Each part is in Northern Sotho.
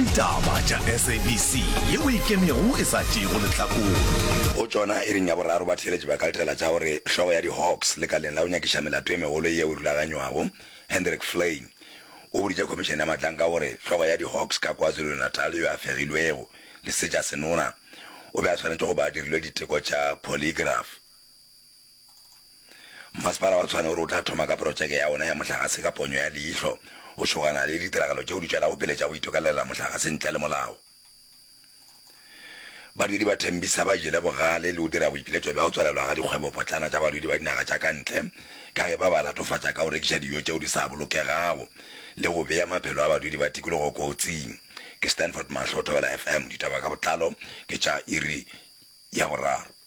Ditaba tša SABC ye o e kemego e sa tšeego lehlakore. Go tšona iring ya boraro batheeletši ba ka letela tša gore hlogo ya di-Hawks lekaleng la go nyakiša melato e megolo yeo e rulaganywago, Hendrik Flein, o boditše khomišene ya matlanka gore hlogo ya di-Hawks ka KwaZulu-Natal yo a fegilwego le setša senona o be a swanetše go ba a dirilwe diteko tša polygraph. Mmasepala wa Tshwane o re o tla thoma ka porotšeke ya ona ya mohlagase ka ponyo ya leihlo go šogana le ditiragalo tšeo di tšwelago pele tša go itokalelela mohlagase ntle le molao. Badudi ba Tembisa ba jele bogale le go dira boipiletšo bja go tswalelwa ga dikgwebopotlana tša badudi ba dinaga tša ka ntle ka ge ba ba latofatša ka go rekiša dijo tšeo di sa bolokegago le go bea maphelo a badudi ba tikologo kotsing. Ke Stanford Mahlo, Thobela FM, ditaba ka botlalo ke tša iri ya boraro.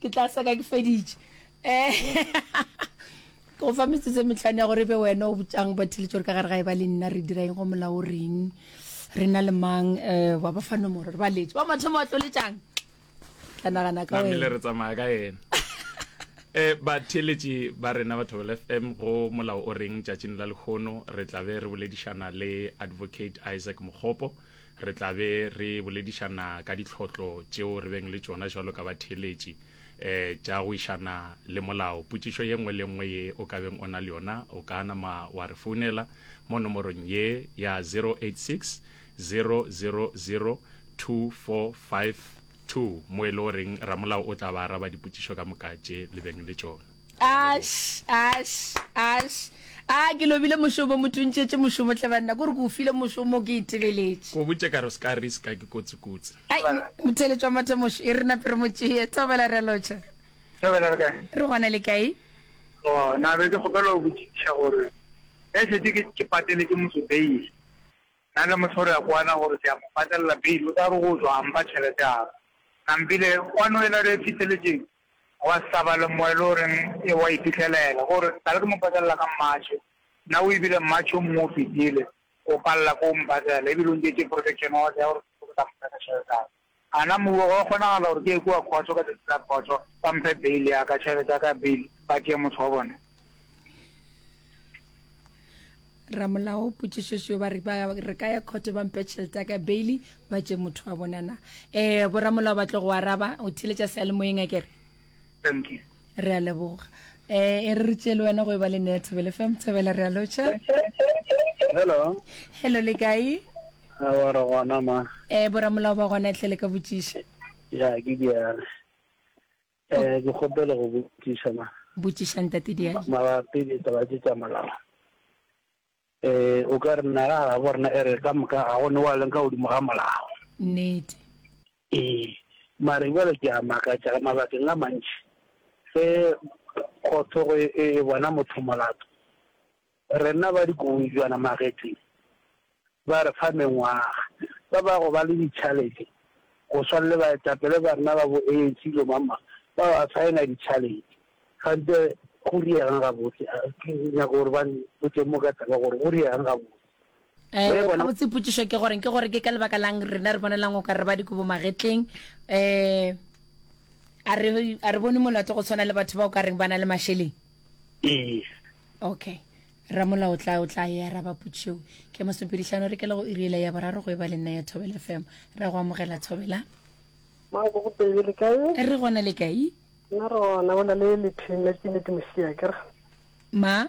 Ke tla seka ke feditše. Ke go fa metsotso e metlhano ya gore e be wena o botšang batheletši gore ka gare ga e ba le nna re dira eng go molao o reng re na le mang um wa ba fa nomoro re ba letse wa mathomo wa tloletšang tla nagana ka namele wena re tsamaya ka ena um batheletši ba rena ba thobela fm go molao o reng tšatšing la lekgono re tla be re boledišana le advocate isaac mokgopo Re tla be re boledišana ka ditlhotlo tšeo re beng le tšona jalo ka batheeletši um tša go išana le molao. Potšišo ye nngwe le nngwe ye o ka beng o na le yona, o ka nama wa re founela mo nomorong ye ya 086 000 2452 mo e le goreng ramolao o tla ba araba dipotšišo ka moka tše le beng le tšona. Ash, ash, ash. A ke lobile mošomo mo tuntšetše mošomo tle banna ko re ke o file mošomo ke itebeletše. Go botše ka re o se ka riska ke kotsi kotsi. Ai motheletšwa matemošo e re nape re mo tšee thobela re lotšha. Thobela re kae? Re gona le kae? Go na be ke kgopela go botšiša gore ge šetše ke ke patele ke motho beile na le motho re ya kwana gore ke ya mo patelela beile o tla re go tswa a mpa tšhelete ya ka nampile kwano e la re e fitheletšeng Gwa hlaba lemoya le o reng ewa o iphihlelele. Go re, Tla le ke mo patelela ka mmatšhe. Na o ebile mmatšhe o mongwe o fetile? Go palela ke o mo patela, ebile o ntšetše protection order ya gore ke ke ka mo fe ka tšhelete ya ka. A na mmuwa go a kgonagala gore ke ye kua khotho ka tšatši la khotho, ba mphe bail ya ka, tšhelete ya ka ya bail, ba tšee motho wa bona? ramolao potšišošo ba re re ka ya khote ba mpe tšhelete ka bailey ba tše motho wa bonana um eh, boramolao ba tlo go araba o theletša sealemoyeng a kere re a leboga um e re re tšele wena go e ba le nea thobele fam thobela re a lotšha hello hello le kae gore gona ma um boramolao ba gona tlhele ka botšiša ya ke diale Ke kgopela go botšiša na. Botšiša Ntate Diali. Mabapi le taba tše tša molao. Um o ka re naga ya gabo rena e re ka moka ga go ne wa leng ka godimo ga molao. Nnete. Ee, mare jale ke a makatša ka mabakeng a mantši ge kgotho e bona motho molato Rena ba dikobojwana magetleng ba re fa mengwaga. Ba ba go ba le ditšhalete go swana le baetapele ba rena ba boeetši ilo mama ba ba saena ditšhalete. Kganthe go rieg'ng gabotse? Ke nyaka gore ba mpotše mo ka taba gore go rieg'ng gabotse. Eh, Ge bona- gabotse potšišo ke gore ke gore ke ka lebaka lang rena re bonelang o ka re ba dikobo magetleng eh a re a re bone molato go tshwana le batho ba o ka reng ba na le mašeleng ee okay ramolao o tla o tla ya ra ba potšeo ke mosopedihlano re kela go iriela ya boraro go e ba le nna ya thobela fm ra go amogela thobela mako go pele le kae e re gona le kae nna rona bona le lepheng la ke nete mosea kere ma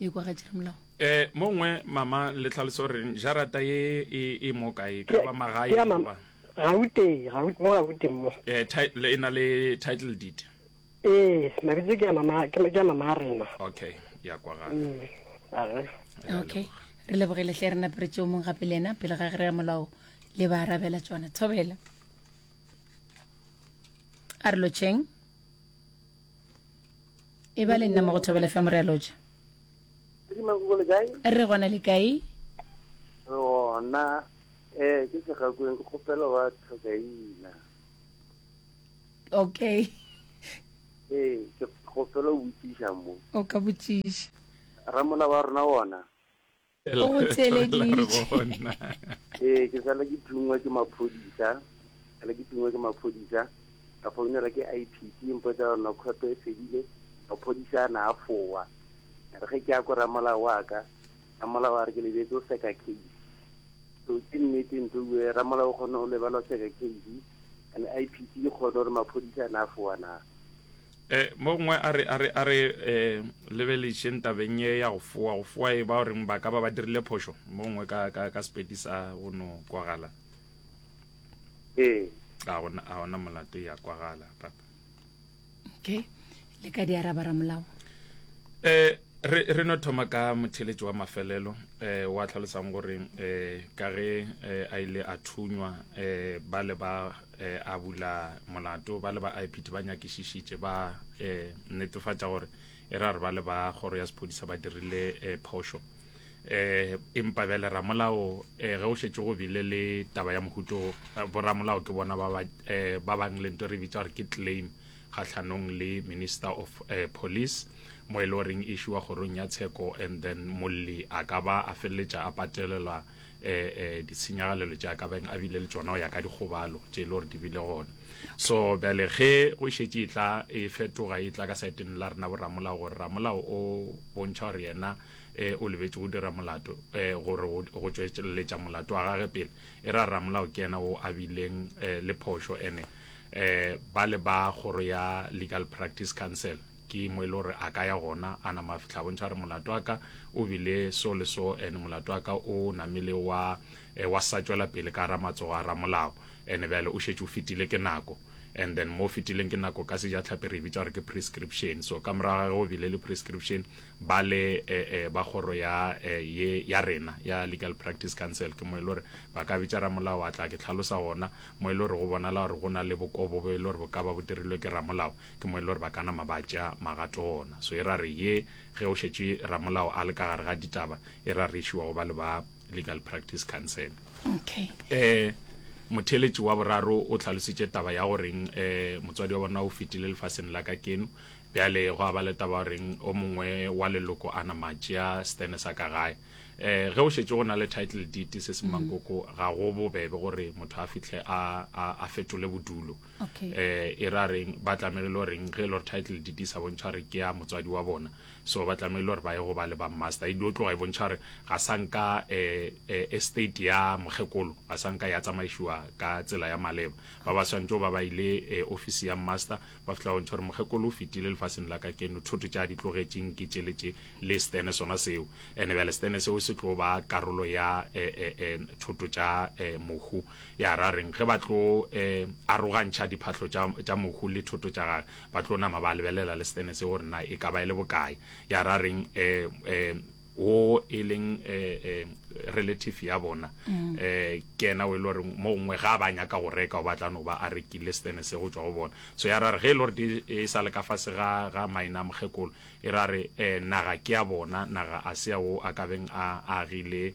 e kwa ga tšeramolago e mo ngwe mama le tlhaloso gore jarata ye e, e mo kae ka ba magae ya mama goba gauteng gaut mo gauteng mo eh, ti- le- e na le title deed ee mabitso ke ya mama ke ke ya mama a rena okay ya kwa gana Mm, aga. okay re lebogele hle re naperetse o mong gape le ena pele ga ge re ya molao le ba arabela tsona thobela a re lotšheng e ba le nna mo go thobela fm re a loja re gona le kae gona um ke segakweng ke kgopela wa tlhokaina okay ee ke kgopela o botsiša mo o ka botsiša ramona wa rona wona o go theeleditše ee ke sala ke thungwa ke maphodisa sala ke thungwa ke maphodisa ka founela ke i p c mpotsa gore nokhoto e fedile maphodisa a na a fowa a re ge ke ya ko ramolao wa ka ramolao a re ke lebetse o seka case so ke nnete ntho bue ramolao o kgone go lebala o seka case and i p c e kgone gore maphodisa a na a fowa na E, mo gongwe a re a re a re e, lebelešeng tabeng ye ya go foa go foa e ba o reng ba ka ba ba dirile phošo mo gongwe ka ka ka sepedi sa go no kwagala ee a gona a gona molato ya kwagala papa okay le ka di araba ramolao eh re re no thoma ka motheletši wa mafelelo eh wa tlhalosang gore eh ka ge eh, a ile a thunywa eh ba le ba e, a bula molato ba le ba ipd ba nyakišišitše ba e, netefatša gore e ra re ba le ba kgoro ya sephodisa ba dirile e, phošo eh empa bjale ramolao eh ge o šetse go bile le taba ya mohuto eh, boramolao ke bona ba eh, bang le nto re bitsa gore ke claim kgatlhanong le minister of eh, police mo e le goreng e šiwa kgorong ya tsheko and then molli a ka ba a feleletša a patelelwa eh, eh, ditshenyagalelo tša ka beng a bile le tsona go ya ka dikgobalo tše e le gore di bile gona so bjale ge go šetše e tla e fetoga e tla ka saeteng la rena boramolao gore ramolao o bontšha gore yena um o lebetse go dira molato um gore go tšweletša molato wa gage pele e ra ramolao ke yena o a bileng um le phošo ene um ba le ba kgoro ya legal practice council Ke mo e le gore a ka ya gona. A nama a fihla a bontšha a re, Molato wa ka o bile so le so, and molato wa ka o namile wa, wa sa tšwela pele ka gara matsogo a ramolao. And bjale o šetše o fetile ke nako. And then mo o fetileng ke nako, ka Sejahlapi re e bitša gore ke prescription. So ka morago ga ge go bile le prescription, ba le ba kgoro ya ye ya rena ya Legal Practice Council ke mo e le gore ba ka bitša ramolao a tla. Ke hlalosa gona mo e le gore go bonala gore go na le bokobo bo e le gore bo ka ba bo dirilwe ke ramolao. Ke mo e le gore ba ka nama ba tšea magato ona. So e ra re ye ge o šetše ramolao a le ka gare ga ditaba, e ra re šiwa go ba le ba Legal Practice Council. Okay. Eh, motheletši wa boraro o tlhalositše taba ya goreng eh, motswadi wa bona o fetile lefaseng la ka keno bjale go a ba le taba goreng o mongwe wa leloko a nama tšea stene sa ka gae eh ge o šetše go na le title deed se se mm. mankoko ga go bobebe gore motho a fitlhe a fetole bodulo okay. eh, e ra reng ba tlamelele gore reng ge e le gore title deed di sa bontšha gore ke ya motswadi wa bona so ba tlamelele gore ba ye go ba le ba master e dio tloga e bontšha gore ga sa nka eh, eh, estate ya mokgekolo ga sa nka ya tsamaišiwa ka tsela ya maleba ba ba swantse ba ba ile eh, office ya master ba fitla bontšha gore mokgekolo o fetile lefaseng la ka keno thoto tša di tlogetseng ke tšele tše le stene sona seo ene bjale stene seo se tlo ba karolo ya eh, eh, eh, thoto tša eh, mohu ya ra reng ge ba tlo um arogantšha diphahlo tša mohu le thoto tša gage ba tlo nama ba lebelela le setene se gore na e ka ba e le bokae ya ra reng um wo e leng um relative ya bona um ke ena o e le gore mo gongwe ga ba nyaka go reka o batla no ba a rekile setene se go tswa go bona so ya ra re ge e le gore e sa le ka fase ga ga maina mokgekolo e ra re um naga ke ya bona naga a se ya wo a kabeng a agile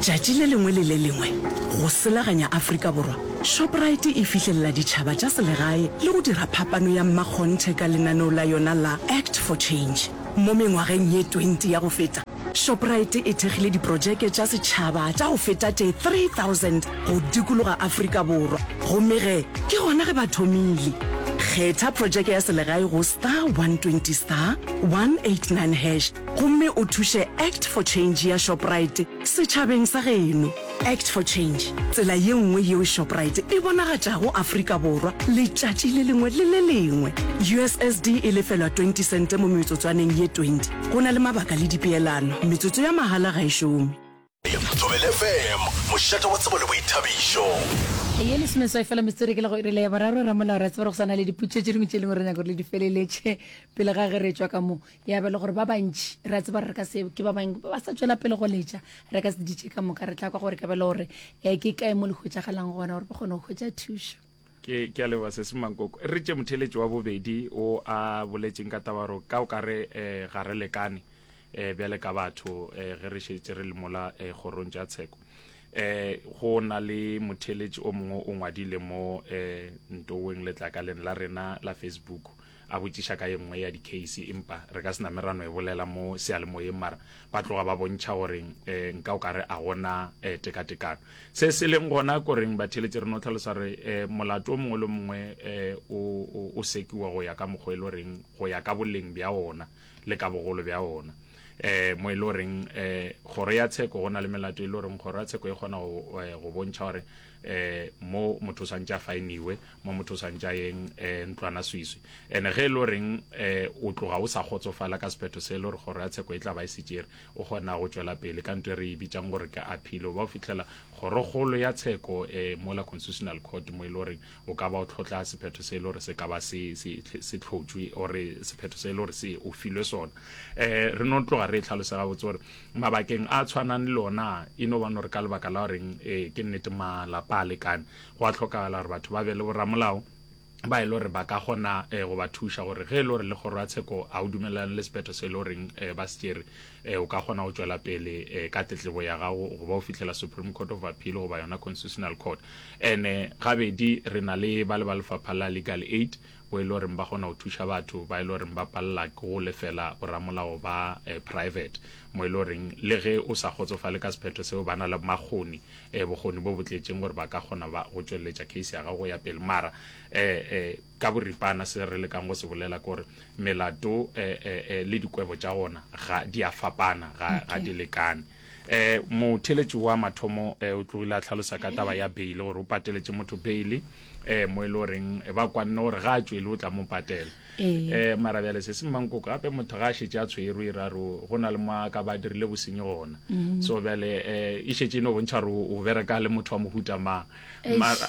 Tšatši le lengwe le le lengwe, go selaganya Afrika Borwa, Shoprite e fihlelela ditšhaba tša selegae le go dira phapano ya mmakgonthe ka lenaneo la yona la Act for Change. Mo mengwageng ye 20 ya go feta, Shoprite e thekgile diprotšeke tša setšhaba tša go feta tše 3000 go dikologa Afrika Borwa. Gomme ge ke gona ge ba thomile. Kgetha protšeke ya selegae go star 120 star 189 hash. gomme o thuše Act for Change ya Shoprite setšhabeng sa geno. Act for Change, tsela ye nngwe yeo Shoprite e bonagatšago Afrika Borwa letšatši le lengwe le le lengwe. USSD e lefelwa 20 sente mo metsotswaneng ye 20. Go na le mabaka le dipeelano. Metsotso ya mahala ga e šome. Thobele FM, mošate wa tsebo le boithabišo. Ye lesomeswai fela metsotso ke la go irela ya boraro. Ramolao re a tseba gore go sa na le diputso tše dingwe tše leng gore re nyaka gore le di feleletše pele ga ge re tšwa ka moo. Ya ba le gore ba bantši re a tseba gore re ka se ke ba bang ba sa tšwela pele go letša re ka se ditše ka moka re tla kwa gore ka ba le gore um ke kae mo le hwetšagalang gona gore ba kgone go hwetša thušo. Ke, ke a leboga Sesi Mankoko. Re tše motheeletši wa bobedi o a boletšeng ka taba gore ka o ka re eh, ga re lekane eh, bjale ka batho eh, ge re šetše re le mola eh, kgorong tša tsheko. Eh, go na le motheeletši o mongwe o ngwadile mo eh, ntoweng letlakaleng la rena la Facebook. a botšiša ka ye nngwe ya dicase empa re ka sena merano e bolela mo sealemoyeng mara ba tloga ba bontšha gore um eh, nka o ka re a gona um eh, tekatekano se se leng gona koreng batheletše re no tlhalosa re um eh, molato o mongwe le mongwe um o sekiwa go ya ka mokgwa e le goreng go ya ka boleng bja ona le ka bogolo bja ona um mo e le goreng um kgoro ya tsheko go na le melato e le goreng kgoro ya tsheko e kgona go bontšha gore eh mo motho sa ntša fainiwe mo motho sa ntša yeng eh ntlwana swiswi ene ge e lo reng eh o tloga o sa kgotsofala ka sephetho se le gore kgoro ya tsheko e tla ba e setsere o gona go tšwela pele ka ntwe re e bitsang gore ke appeal o ba o fitlhela kgorokgolo ya tsheko eh mola constitutional court mo e le gore o ka ba o tlhotla sephetho se le gore se ka ba se se tlhotšwe ore sephetho se le gore se o filwe sona eh re no tloga re e tlhalosega botse gore mabakeng a tshwanang le ona e no bano re ka lebaka la goreng um ke nnete malapa a lekane go a tlhokagala gore batho ba be le boramolao ba e le gore ba ka gona um go ba thuša gore ge e le gore le kgoro ya tsheko a o dumelelane le sephetho se e le goreng um ba se tšere um o ka gona go tšwela pele um ka tletlebo ya gago go ba o fitlhela supreme court of appeal goba yona constitutional court and-e gabedi re na le ba le ba lefapha la legal aid bo e le goreng ba kgona go thuša batho ba e le goreng ba palela ke go lefela boramolao ba eh, private mo e le goreng le ge o sa kgotsofale ka sephetho seo ba na le makgoni eh, bokgoni bo bo tletšeng gore ba ka kgona ba go tšweletša case ya gago ya pele mara eh, eh, ka boripana se re lekang go se bolela ke gore melato eh, eh, eh, le dikwebo tša gona ga di a fapana ga, ga di lekane Ee, motheeletši wa mathomo ee, o tlogile a tlhalosa ka taba ya beile gore o pateletše motho beile ee, mo e le goreng e ba kwanne gore ga a tšwele o tla mo patela Ee. ee, mara bjale se se mmankoko gape motho ga a šetše a tshwerwe e ra re o- go na le mo a ka ba dirile bosenyi gona Mm-hmm. so bjale ee, e šetše e no bontšha gore o o bereka le motho wa mohuta mang Eish. mara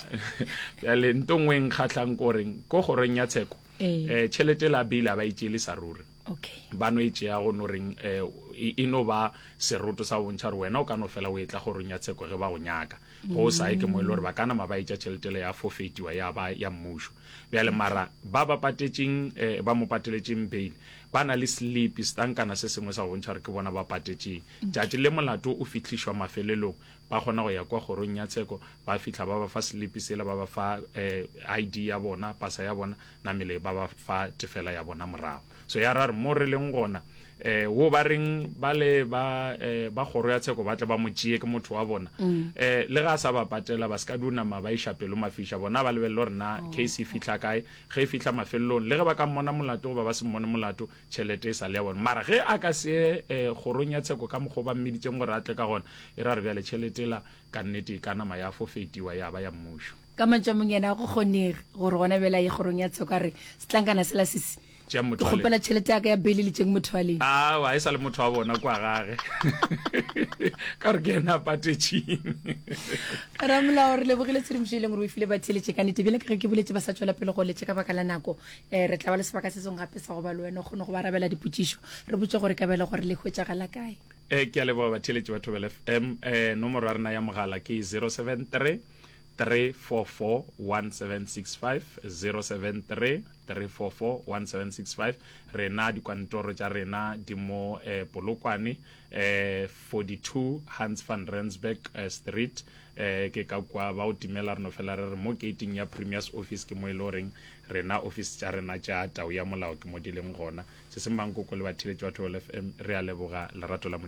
bjale nto ngwe e nkgatlhang ko goreng ko kgorong ya tsheko Ee. ee, tšhelete la beile a ba e tšeele sa ruri okay ba no e tšea go no reng eh, e, e no ba seroto sa bontšha gore wena o ka no fela o etla gorong ya tsheko ge ba go nyaka go o sae ke mo e le gore ba kana ma ba etša tšheletele ya fofetiwa ya ba ya mmušo bjale mara ba ba patetseng eh, ba mo pateletseng bail ba na le sleep setankana se sengwe sa go bontšha gore ke bona ba patetseng tšatši le molato o fitlhišwa mafelelong ba kgona go ya kwa kgorong ya tsheko ba fitlha ba ba fa sleep sela ba ba fa eh, id ya bona pasa ya bona namele ba ba fa tefela ya bona morago so ya ra re mo re leng gona eh wo ba reng ba le ba eh, ba kgoro ya tsheko ba tle ba mo tšee ke motho wa bona mm. eh le ga sa ba patela ba ska duna ma ba iša pelo mafisha bona ba lebelelo rena oh. case e fihla kae ge e fihla mafelelong le ge ba ka mmona molato goba ba se mmone molato tšhelete e sa le ya bona mara ge a ka se eh kgorong ya tsheko ka mokgwa ba mmeditseng gore a tle ka gona e ra re bjale tšhelete la ka nnete e ka nama ya fofetiwa ya ba ya mmušo Ka mantšu a mong, yena go kgonege gore gona bjale a ye kgorong ya tsheko a re, Setlankana sela se se, Tšeang motho wa Ke lena. kgopela tšhelete ya ka ya beile le tšeng motho wa lena. Aowa, e sa le motho wa bona kua gage. Ka gore ke yena a patetšeng. Ramolao, re lebogile tshedimošo e leng gore o e file batheeletše. Ka nnete, bjale ka ge ke boletše, ba sa tšwela pele go letša ka baka la nako. Eh, re tla ba le sebaka se sengwe gape sa go ba le wena, o kgone go ba arabela dipotšišo. Re botše gore e ka ba e le gore le hwetšagala kae. Eh, ke a leboga batheeletši ba Thobela FM. Eh, nomoro ya rena ya mogala ke 073. 3441765 073 3441765 Rena dikwantoro tša rena di mo eh, Polokwane eh, 42 Hans van Rensburg eh, Street eh, Ke ka kwa ba o timela re no fela re re mo geiting ya Premier's office ke mo e le goreng rena office tša rena tša tau ya molao ke mo di leng gona. Sesemang Koko le batheeletši ba Thobela FM re a leboga lerato la Modimo.